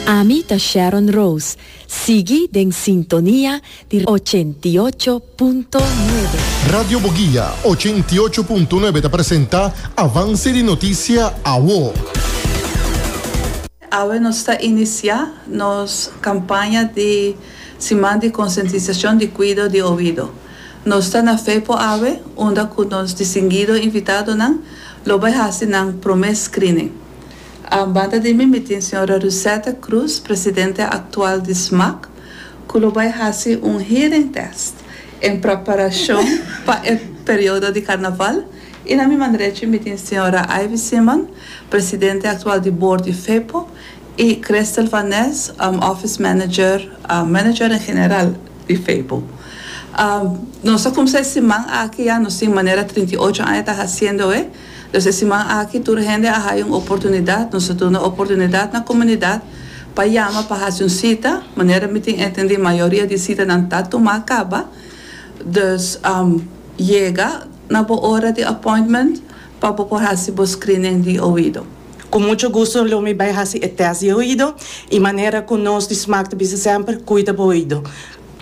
Ami ta Sharon Rose, sigui den sintonia di ochenta i ocho punto nuebe. Radio Boguia ochenta i ocho punto nuebe ta presenta Avance di Noticia Awo. Awe nos ta inicia nos campaña di siman di concientisacion di cuido di oido. Nos ta na fe por awe unda cu nos distinguido invitadonan lo bay haci nan prome screening. A banda di mi, mi tin señora Rusette Cruz, presidente actual di SMAC, cu lo bay haci un hearing test en preparacion pa e periodo di Carnaval y na mi man derecho mi tin señora Ivy Simon, presidente actual di board di FEPO y Christel van Nes, office manager, manager en general di FEPO. Nos a cumsa e siman aki ya, nos tin manera trinta y ocho aña ta haciendoe. Los e siman aki tur hende a haya un oportunidat, nos a duna oportunidat na comunidad pa yama pa haci un cita, manera mi tin entendi mayoria di citanan ta tuma caba, dus yega na bo ora di appointment pa bo por haci bo screening di oido. Cu mucho gusto lo mi bay haci e test di oido y manera cu nos di smaak ta bisa semper, cuida bo oido.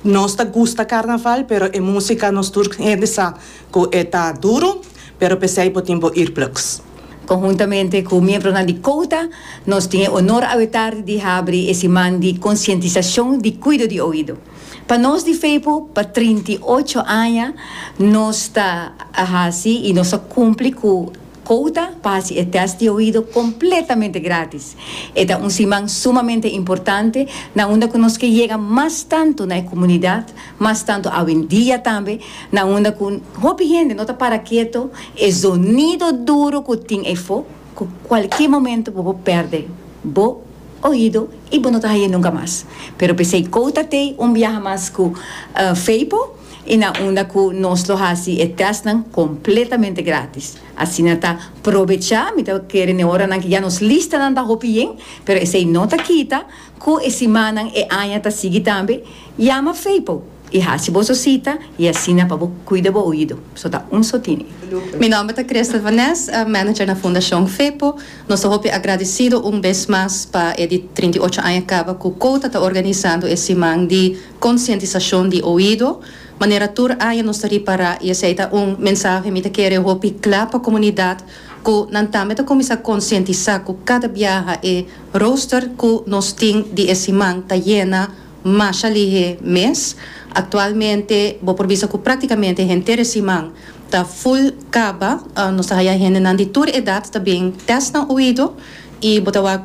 Nos ta gusta carnaval pero e musica nos tur hende sa. Cu e ta duro, pero pesey bo tin bo ir plugs. Conhuntamente cu miembronan di COUTA, nos tin e honor awetardi di habri e siman di concientisacion di cuido di oido. Pa nos di Feypo, pa trinta i ocho aña nos ta a haci y nos ta cumpli cu Kouta pa hasi e tèst di oido kompletamente grátis. E ta un siman sumamente importante na unda ku nos ke yega mas tantu na e komunidat, mas tantu awendia tambe, na unda ku hopi hende no ta para keto, e zonido duru ku tin eyfo ku kualke momento bo por pèrdè bo oido i bo no ta hañ'é nunka mas. Pero p'esei Kouta tei un biaha mas ku Feipo. i na unda ku nos lo hasi e tèstnan kompletamente grátis. Asina ta probechá mi ta kere n'e oranan ku ya nos listanan ta hopi yen, pero esei no ta kita ku e simannan e aña ta sigui tambe, yama Feipo i hasi boso sita i asina pa bo kuida bo oido. So ta un so tini. Mi nòmber ta Christel van Nes, manager na Fundashon Feipo. Nos ta hopi agradesido un bes mas pa e di trinta i ocho aña kaba ku Kouta ta organisando e siman di. Konsientisashon di oido, Manera tur aña nos ta ripará i esei ta un mensahe mi ta kere hopi kla pa komunidat ku nan tambe ta kuminsá konsientisá ku kada biaha e rooster ku nos tin di e siman ta yena masha lihé mes. Aktualmente bo por bisa ku praktikamente henter e siman ta ful kaba. Nos ta haya hendenan di tur edat ta bin tèst nan oido i bo ta wak.